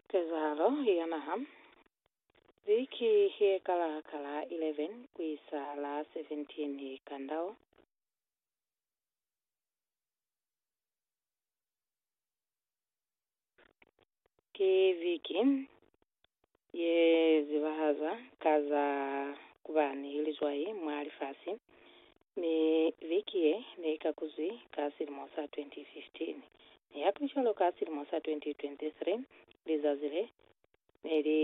Kezahalo ya Naha, Viki ye kala ka la 11 ku isa la 17 ka ndau. Ki viki ye zibahazwa ka za ku ba ni lizwai mwa lifasi, mi viki ye ne i kakuzwi ka silimo sa 2015. Nihakulicwalo, ka silimo sa 2023, lizazi le ne li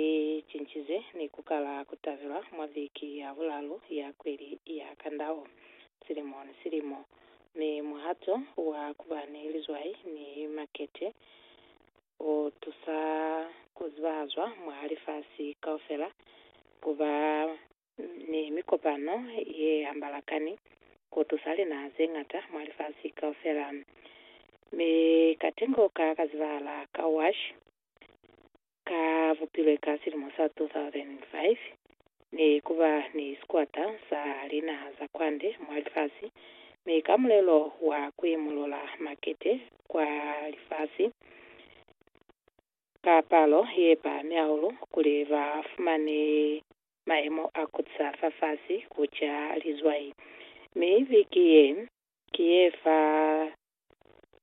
cincizwe ni ku kala ku tabelwa mwa viki ya bulalu ya kweli ya Kandao silimo ni silimo, mi muhato wa ku ba ni lizwai ni makete u tusa ku zibahazwa mwa lifasi kaufela, ku ba ni mikopano ye hambalakani, ku tusa linaha ze ñata mwa lifasi kaufela. Mi katengo ka ka zibahala ka WASH ka bupilwe ka silimo sa 2005, Ne ku ba ni sikwata sa linaha za kwande mwa lifasi, mi ka mulelo wa ku imulula makete kwa lifasi ka palo ye pahami hahulu kuli ba fumane mayemo a kutisa fafasi ku ca lizwai. Mi biki ye, ki ye fa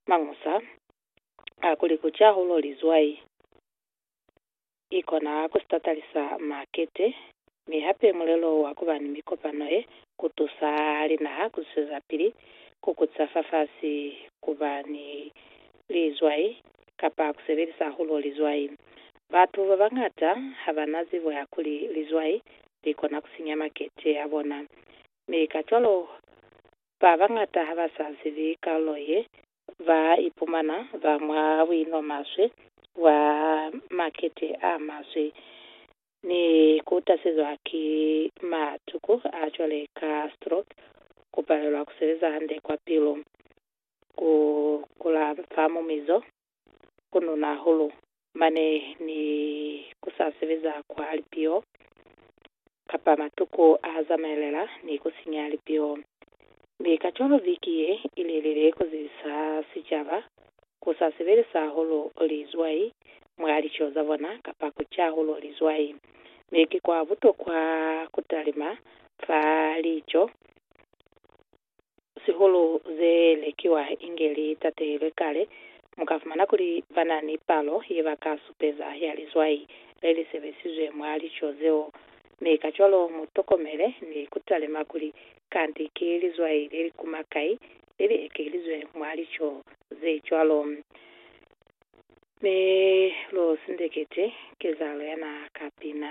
mañusa a kuli ku ca hulo lizwai. i kona ku sitatalisa makete, mi hape mulelo wa ku ba ni mikopano ye ku tusa linaha ku zwezapili ku kutisa fafasi, ku ba ni lizwai, kapa ku sebelisa hahulu lizwai. Batu ba bañata ha ba na zibo ya kuli lizwai li kona ku sinya makete a bona, mi kacwalo ba bañata ha ba sa zibi kalulo ye ba ipumana ba mwa buino maswe bwa makete a maswe ni ku tasezwa ki matuku a cwale ka stroke, ku palelwa ku sebeza hande kwa pilu, ku kula fa mumizo, ku nuna hulu, Mane ni ku sa sebeza kwa lipio, kapa matuku a zamaelela ni ku sinya lipio. Mi kacwalo viki ye i lelele ku zibisa sicaba ku sa sebelisa hahulu lizwai mwa lico za bona kapa ku ca hahulu lizwai. Mi ki kwa butokwa ku talima fa lico. sihulu ze lekiwa inge li tatelwe kale, mu ka fumana kuli ba na ni palo ye ba ka supeza ya lizwai le li sebezizwe mwa lico zeo. Mi kacwalo mu tokomele ni ku talima kuli kanti ki lizwai le li kuma kai le li ekelizwe mwa lico ze cwalo. Mi lu sindeketi kezahalo yana ka pina.